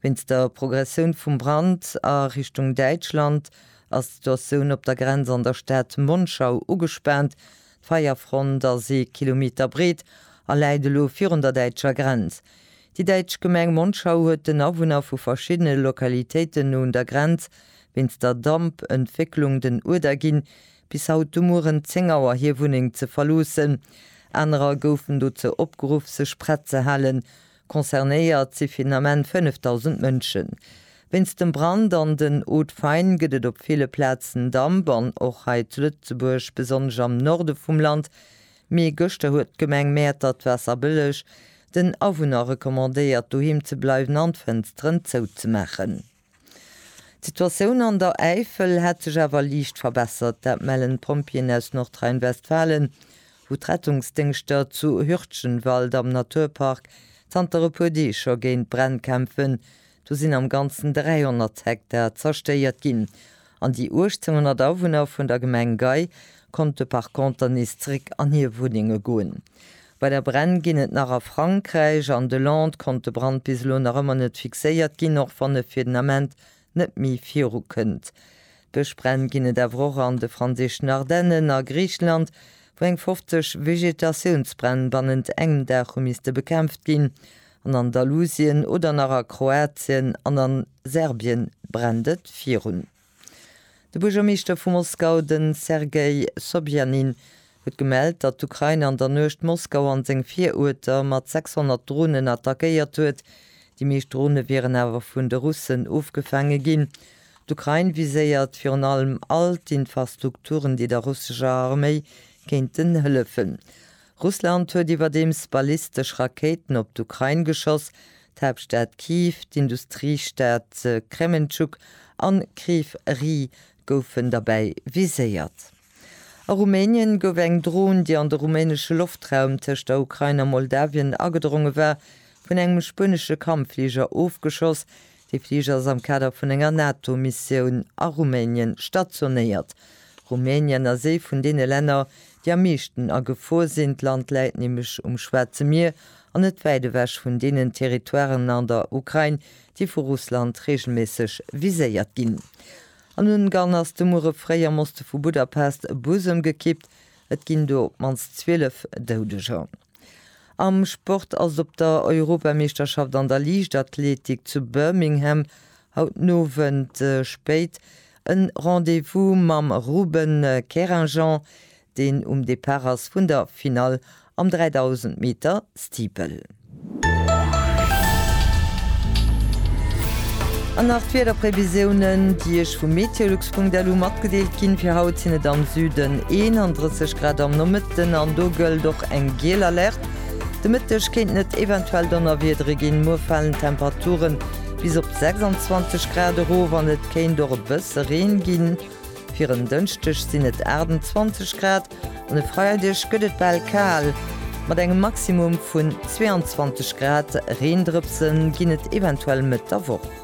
Wéinst der Progressioun vum Brand a Richtung Däitschland ass d'Situatioun op der Grenz an der Stad Monschau ugespaant. D'Feierfront ass ee Kilometer breet a läit elo virun der däitscher Grenz. Déi däitsch Gemeng Monschau huet den Awunner vu verschiddene Lokalitéiten no un der Grenz wéinst der Damp-Entwécklung den Uerder ginn, bis haut de Mueren 10 Auer hir Wunneng ze verloossen. Anerer goufen dozou opgeruff, sech prett ze halen, Concernéiert si fir den Ament 5.000 Mënschen. Wéinst dem Brand an den Hautes Faines gëtt et op ville Plazen Damp an och hei zu Lëtzebuerg, besonnesch am Norde vum Land. Mee gëschter huet d'Gemeng Mäertert d'Waasserbëlleg den Awunner recommandéiert doheem ze bleiwen an d'Fënsteren zouzemaachen. D'Situatioun an der Äifel hätt sech awer liicht verbessert. Dat mellen d'Pompjeeën aus Nordrhein-Westfalen, wou d'Rettungsdéngschter zu Hürtgenwald am Naturpark zanter e puer Deeg scho géint d'Bränn kämpfen. Do sinn am Ganzen 300 Hektar zerstéiert ginn. An déi 1800 Awunner vun der Gemeng Gei konnte par conter nees zréck an hir Wunnenge goen. Weider Bränn ginn et nach a Frankräich. An de Lande konnt de Brand bis elo nach ëmmer net fixéiert ginn, och wann e fir den Ament net méi virukënnt. Bëschbränn ginn et awer och an de franséischen Ardennen a Griicheland, wou eng 50 Vegetatiounsbränn bannent engem Dag hu misste bekämpft ginn. an Andalusien oder nach a Kroatien an a Serbien brennt et virun. De Buergermeeschter vu Moskau, de Sergei Sobjanin, huet gemellt, datt d'Ukrain an der Nuecht Moskau an seng Viruerter mat 600 Dronen attackéiert huet. Déi meescht Drone wieren awer vun de Russen ofgefaange ginn. D'Ukrain viséiert virun allem all d'Infrastrukturen, déi der russescher Arméi kéinten hëllefen. Russland huet iwwerdeems ballistesch Rakéiten op d'Ukrain geschoss, d'Haaptstad Kyiv, d'Industriestad Kremenchuk an Kryv Rih goufen derbäi viséiert. A Rumänien gouf eng Dron, déi an de rumänesche Loftraum tëscht der Ukrain a Moldawien agedronge war, vun engem spuenesche Kampffliger ofgeschoss, Dee Fliger ass am Kader vun enger NATO-Missioun a Rumänien stationéiert. Rumänien ass ee vun deene Länner, déi am meeschten a Gefor sinn. D'Land läit nämlech um Schwaarze Mier an net wäit ewech vun deenen Territoiren an der Ukrain, déi vu Russland reegelméisseg viséiert ginn. An Ungarn ass de Muere fréi am Oste vu Budapest e Bus ëmgekippt. Et ginn do op d'mannst 12 Doudeger. Am Sport ass op der Europameeschterschaft an der Liichtathletik zu Birmingham haut den Owend spéit en Rendez-vous mam Ruben Kerinjan, deen um Depart ass vun der Finall am 3000 Meter Steeple. An nach d'Wiederprevisiounen, déi Iech vu MeteoLux. Punkt elo matgedeelt ginn. Fir haut sinn et am Süden 31 Grad am Nomëtten an do gëllt och eng giel Alerte. De Mëtteg kéinten et eventuell Donnerwiedere ginn, muer falen d'Temperature bis op 26 Grad erof an et kéint och e bësse Reen ginn. Fir en Dënschdeg sinn et 28 Grad an e Freideg gëtt et bal kal mat engem Maximum vun 22 Grad. Reendrëpse ginn et eventuell Mëtt der Woch.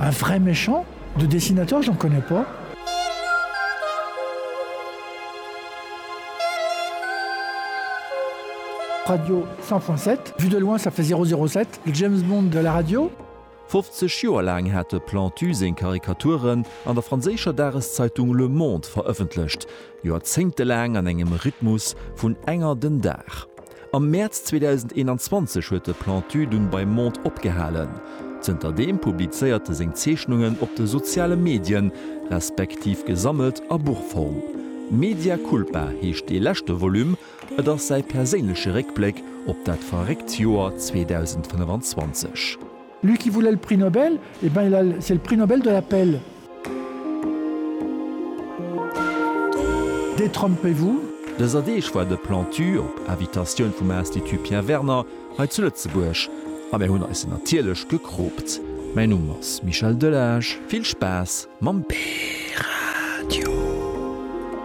Un vrai méchant de dessinateur j'en connais pas. Radio 100.7 vue de loin ça fait 007 le James Bond de la radio. 50 Joer laang hat de Plantu seng Karikaturen an der franséischer Dageszeitung Le Monde verëffentlecht, joerzéngtelaang an engem Rhythmus vun enger den Dag. Am Mäerz 2021 huet de Plantu dunn beim Monde opgehalen. Zënter deem publizéiert e seng Zeechnungen op de soziale Medien, respektiv gesammelt a Buchform. Media Culpa heescht dee leschte Volume, et ass säi perséinleche Réckbléck op dat verréckt Joer 2025. Lui qui voulait le prix Nobel, eh ben il a, c'est le prix Nobel de la paix. Détrompez-vous! Dëser Deeg war de Plantu, op Invitatioun vum Institut Pierre Werner, hei zu Lëtzebuerg a mär hunn eis en natierlech gekroopt. Mäin Numm ass Michel Delage. Vill Spaass mam P-Radio!